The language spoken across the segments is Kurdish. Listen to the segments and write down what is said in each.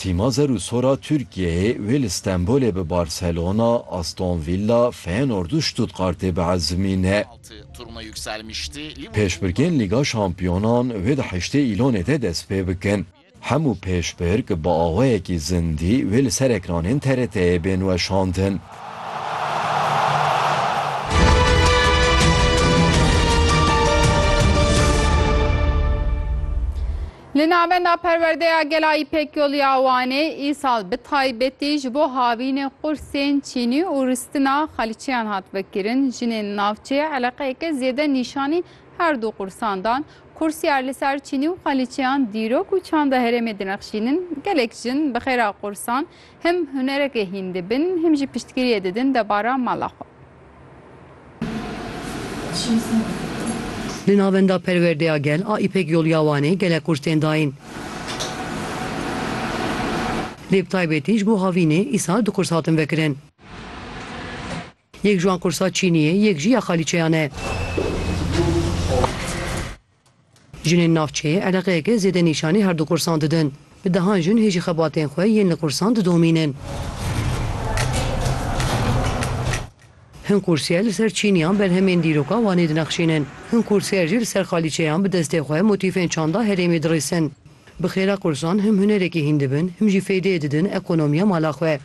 Tîma zer û sor a Tirkiyeyê wê li Stenbolê bi Barcelona, Aston Villa, Feyenoord û Stuttgartê biezimîne. Pêşbirkên Lîga Şampiyonan wê di heştê Îlonê de dest pê bikin. Hemû pêşbirk bi awayekî zindî wê li ser ekranên TRT'ê bên weşandin. Li Navenda Perwerdeya Gela Îpekyolî ya Wanê îsal bi taybetî ji bo havînê qursên çînî û ristina xalîçeyan hat vekirin. Jinên navçeyê eleqeyeke zêde nîşanî her du qursan dan. Kursiyar li ser çînî û xalîçeyan dîrok û çanda herêmê dinexşînin. Gelek jin bi xêra qursan him hunereke hîn dibin him jî piştgiriyê didin debara mala xwe. Li Navenda Perwerdeya Gel a Îpek Yolya Wanê gelek qûrs tên dayîn. Lê bi taybetî ji bo havînê îsal du qûrs hatin vekirin. Yek ji wan qûrsa çînî ye, yek jî ya xalîçeyan e. Jinên navçeyê eleqeyeke zêde nîşanî her du qursan didin. Bi dehan jin hê jî xebatên xwe yên li qursan didomînin. Hin kursîyer li ser çîniyan berhemên dîroka Wanê dinexşînin. Hin kursîyer jî li ser xalîçeyan bi destê xwe motîfên çanda herêmê dirîsin. Bi xêra qursan him hunerekî hîn dibin, him jî feydeyê didin ekonomiya mala xwe.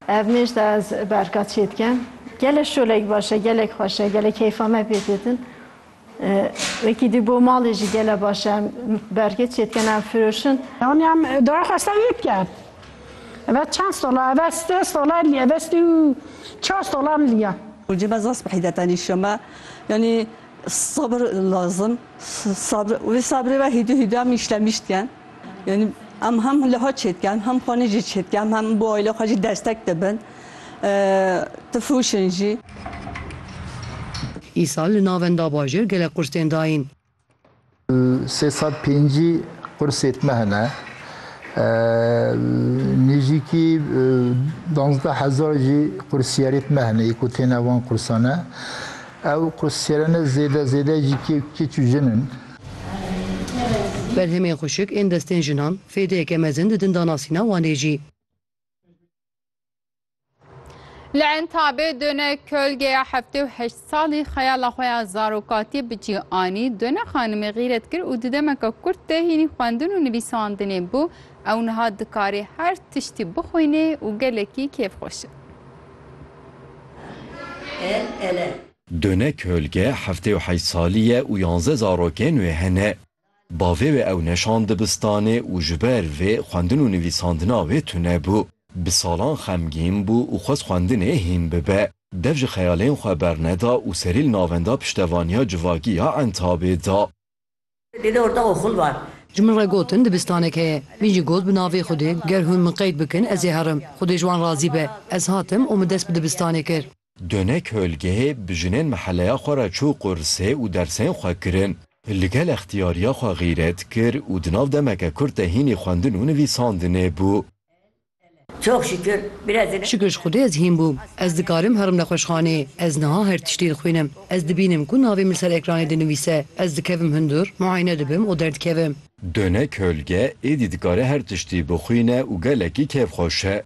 Ev mêj de ez berka çê dike. Gelek şolek baş e, gelek xweş e, gelek keyfa me pê ditin. Wekî dî bo malê jî gele baş e. Em berkê çê dikin, em firoşin. Yanî em dayê xwe ser yê dike. Eve çend sola, eve sê sola lî, eve sî û çar sola em lî ye. Hocê me zaf bi hîdet anîşiya me. Yanî sebir lazim, sabir. Wê sebirê ve hîdû hîdû em îşlemiştiyen. Yanî em hem liha çêdike em hem xanî jî çêdike em hem bo aîla xwe jî destek dibin tu fûşin jî. Îsal li navenda bajêr gelek qursên dayîn. Sê sed pêncî qursê tme hene. Nêzîkî danzdeh hezar jî qursiyerê tme hene yê ku têne van qursane. Ew qursiyerene zêde zêde jî kê kiç û jin in. Berhemên xuşik ên destên jinan fêdeyeke mezin didin danasîna Wanê jî. Li Entabê dune kölgeya heftê û heşt salî xeyala xwe ya zarokatiyê bi cî anî, dune xanimê xîret kir û di demeke kurt de hînî xwendin û nivîsandinê bû, ew niha dikarê her tiştî bixwînê û gelekî kêfxweş e. Dune Kölge heftê û heyt salî ye û yanze zarokên wê hene. Bavê wê ew neşand dibistanê û ji ber vê xwendin û nivîsandina wê tune bû. Bi salan xemgîn bû û xwest xwendinê hîn bibe. Dev ji xeyalên xwe berneda û serî li navenda piştevaniya civakî ya Entabê da. Ji min re gotin dibistanek heye. Min jî got bi navê Xwedê ger hûn min qeyd bikin ez ê herim. Xwedê ji wan razî be. Ez hatim û min dest bi dibistanê kir. Dune Kölgehê bi jinên meheleya xwe re çû qursê û dersên xwe kirin. Li gel extiyariya xwe xîret kir û di nav demeke kurt de hînî xwendin û nivîsandinê bû. Çok şükür biraz da. Şikir ji Xwedê ez hîn bûm. Ez dikarim herim nexweşxanê. Ez niha her tiştî dixwînim. Ez dibînim ku navê min li ser ekranê dinivîse. Ez dikevim hundir, muayene dibim û derdikevim. Döne kölge êdî dikare her tiştî bixwîne û gelekî kêfxweş e.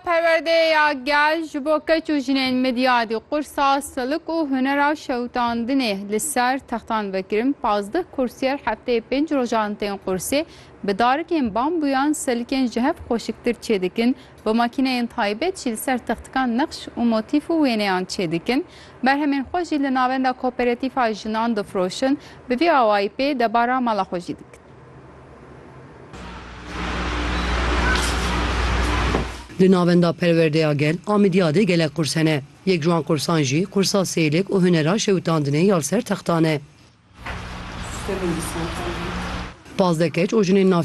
Perwerdeyê ya gel ji bo keç û jinên midyadî qursa silik û hunera şewitandinê li ser textan vekirin. Pazdeh kursiyer hefteyê pênc rojan tên qursê, bi darikên bambûyan silikên ji hev xweşiktir çêdikin, bi makîneyên taybet jî li ser textikan nexş û motîf û wêneyan çêdikin. Berhemên xwe jî li navenda koperetîfa jinan difroşin, bi vî awayî pê debara mala xwe jî dikin. Di navenda perwerdeya gel a Midyadê gelek qurs hene. Yek ji wan qursan jî qursa sêlik û hunera şewitandinê ya li ser textan e. Pazdeh keç û jinên navçeyên